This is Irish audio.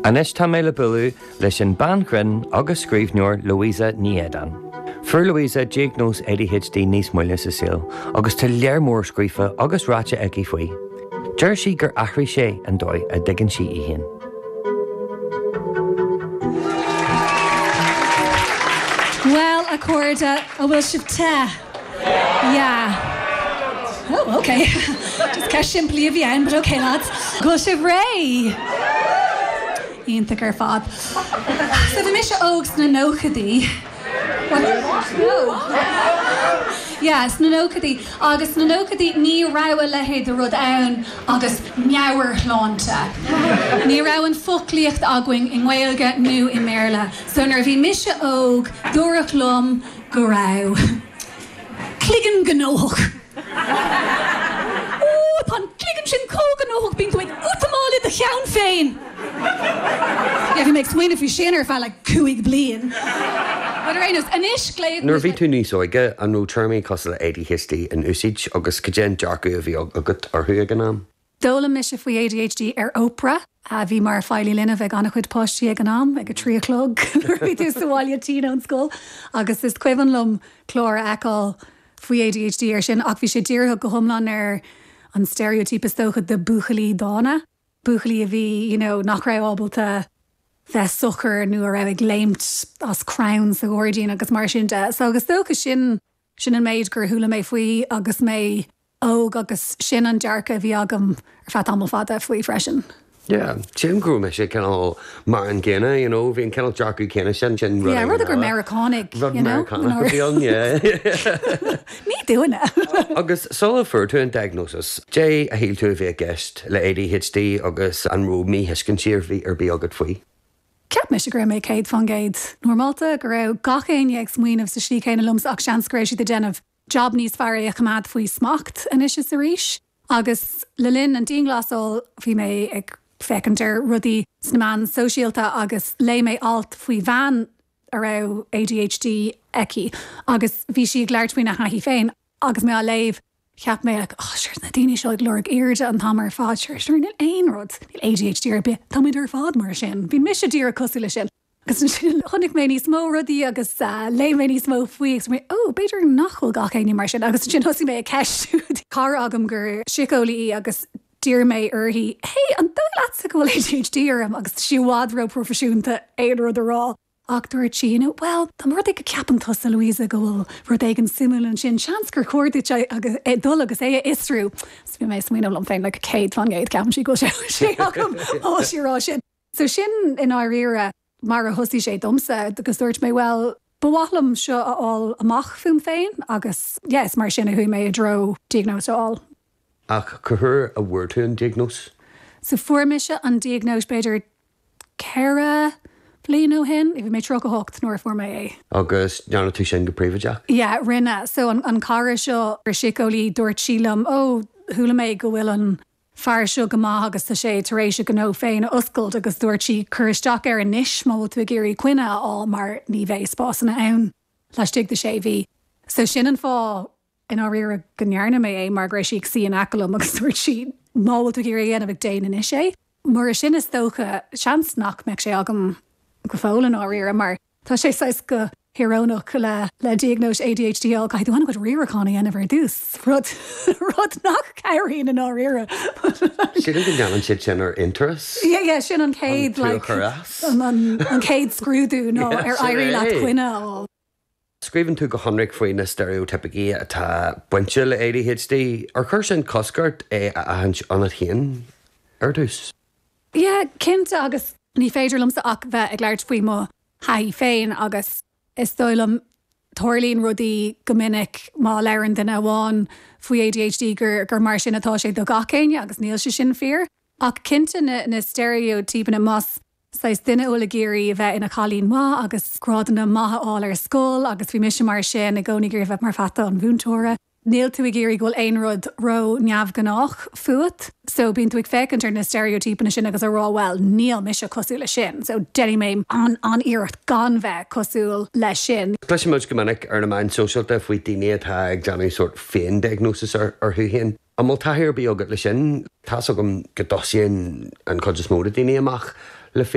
Anois tá mé le bualadh leis an bhean ghrinn agus scríbhneoir Louisa Ní Éideáin. Fuair Louisa diagnóis ADHD níos moille sa saol agus tá lear mór scríofa agus ráite aici faoi. Deir sí gur athraigh sé an dóigh a dtuigeann sí í féin. Bhuel, a chairde, an bhfuil sibh te? Yeah. Oh, ok. Just ceist simplí a bhí ann, but ok lads. Go bhfuil sibh réidh? Iontach ar fad. So bhí mise óg sna nóchaidí. What? No. Yeah, sna nóchaidí. Agus sna nóchaidí ní raibh a leithéid de rud ann agus meabhairshláinte. Ní raibh an foclaíocht againn i nGaeilge nó i mBéarla. So nuair a bhí mise óg, dúradh liom. go raibh cloigeann gnóthach. Ó, tá an cloigeann sin chomh gnóthach, bíonn tú ag útamáil i do cheann féin! Yeah, bhí mé ag smaoineamh faoi sin ar feadh like cúig bliain. But ar aon nós, anois glaotar Nuair a bhí tú níos óige, an raibh téarmaí cosúil le ADHD in úsáid agus cad é an dearcadh a bhí agat orthu ag an am? D'fhoghlaim mise faoi ADHD ar Oprah, a bhí mar feighlí linbh ag an-chuid páistí ag an am, ag a trí a chlog nuair a bhí tú sa bhaile tinn ón scoil, agus is cuimhin liom clár a fheiceáil faoi ADHD air sin ach bhí sé dírithe go hiomlán ar an stereotype is dócha de buachaillí dána, buachaillí a bhí you know nach raibh ábalta bheith socair nó a raibh ag léimt as crann sa ghairdín agus mar sin de. So is dócha sin. Sin an méid gur chuala mé faoi agus mé óg agus sin an dearcadh a bhí agam ar feadh tamall fada faoi freisin. Yeah, sílim go raibh mise cineál mar an gcéanna, you know, bhí an cineál dearcadh céanna sin sin rud. Yeah, rud gur Meiriceánaigh, you know. Meiriceánaigh, yeah. Ní dúinne. Agus sula fuair tú an diagnosis, cad é a shíl tú a bhí i gceist le ADHD agus an raibh míthuiscintí ar bith agat faoi? Cheap mise go raibh mé céad fán gcéad normálta, go raibh gach éinne ag smaoineamh sa slí chéanna liomsa ach seans go raibh siad ag déanamh jab níos fearr é a choimeád faoi smacht anois is arís agus le linn an dianghlasáil bhí mé ag féachaint ar rudaí sna meáin shóisialta agus léigh mé alt faoi bhean a raibh ADHD aici agus bhí sí ag labhairt faoina thaithí féin agus mé á léamh. Cheap mé, Ach, á, sure, na daoine seo ag lorg airde an t-am ar fad, sure, sure, níl aon rud, níl ADHD ar bith, táimid ar fad mar sin, bímse díreach cosúil leis sin. Agus ansin chonaic mé níos mó rudaí agus léigh mé níos mó faoi agus mé, Ó, b'fhéidir nach bhfuil gach éinne mar sin. Agus ansin thosaigh mé ag ceistiú cara agam gur síceolaí í agus d'iarr mé uirthi, Hey, an dóigh leatsa go bhfuil ADHD orm? Agus tá sí i bhfad ró-proifisiúnta aon rud a rá. Ach dúirt sí, you know, bhuel, tá rud ag, ceapann tusa, Louisa, go bhfuil rud éigin suimiúil ansin, seans gur chóir duit é agus, é, dul agus é a fhiosrú. So bhí mé ag smaoineamh liom féin, like, céad faoin gcéad, ceapann sí go bhfuil sé, sé agam, ó tá sí ag rá sin. So sin i ndáiríre mar a thosaigh sé domsa agus dúirt mé, bhuel, ba mhaith liom seo a fháil amach fúm féin agus, yes, mar sin a chuaigh mé i dtreo diagnóis a fháil. Ach cén uair a bhfuair tú an diagnóis? Sea, fuair mise an diagnóis b'fhéidir ceithre bliain ó shin. Bhí mé tríocha hocht nuair a fuair mé é. Agus an ndearna tú sin go príobháideach? Yeah, rinne. So an cara seo, síceolaí, dúirt sí liom, oh, chuala mé go bhfuil an fear seo go maith agus tá sé tar éis a ghnó féin a oscailt agus dúirt sí, cuir isteach air anois má tá tú ag iarraidh coinne a fháil mar ní bheidh spásanna ann laistigh de sé mhí. So sin an fáth. i ndáiríre go ndearna mé é mar go raibh sí ag suí in aice liom agus dúirt sí 'má tá tú ag iarraidh é a dhéanamh, déan anois é'. Mura sin is dócha, seans nach mbeadh sé agam go fóill i ndáiríre mar tá sé saghas go híorónach le diagnóis ADHD a fháil, caithfidh tú an-chuid riaracháin a dhéanamh ar dtús, rud nach gcabhraíonn i ndáiríre. Sílim go ndéanann siad sin d'aon turas. Yeah, sin an chéad, like, an chéad scrúdú ná ar éirí leat coinne a fháil. Scríobhann tú go hionraic faoi na steiréitíopaí atá bainte le ADHD. Ar chuir sin cosc ort é a aithint ionat féin ar dtús? Yeah, cinnte agus ní féidir liomsa ach bheith ag labhairt faoi mo thaithí féin agus is dóigh liom tarlaíonn rudaí go minic má labhrann duine amháin faoi ADHD gur mar sin atá sé do gach éinne agus níl sé sin fíor ach cinnte na steiréitíopanna más saghas duine thú atá ag iarraidh a bheith ina chailín maith agus grádanna maithe a fháil ar scoil agus bhí mise mar sin, i gcónaí ag iarraidh a bheith mar pheata an mhúinteora. Níl tú ag iarraidh go bhfuil aon rud ró-neamhghnách fút so bíonn tú ag féachaint ar na steiréitíopanna sin agus ag rá bhuel níl mise cosúil leis sin so déanfaidh mé an-iarracht gan bheith cosúil leis sin. Cloisimid go minic ar na meáin sóisialta faoi dhaoine atá ag déanamh sórt féin-diagnosis orthu féin. An bhfuil taithí ar bith agat leis sin? Tá's agam go dtosaíonn an chuid is mó de dhaoine amach le.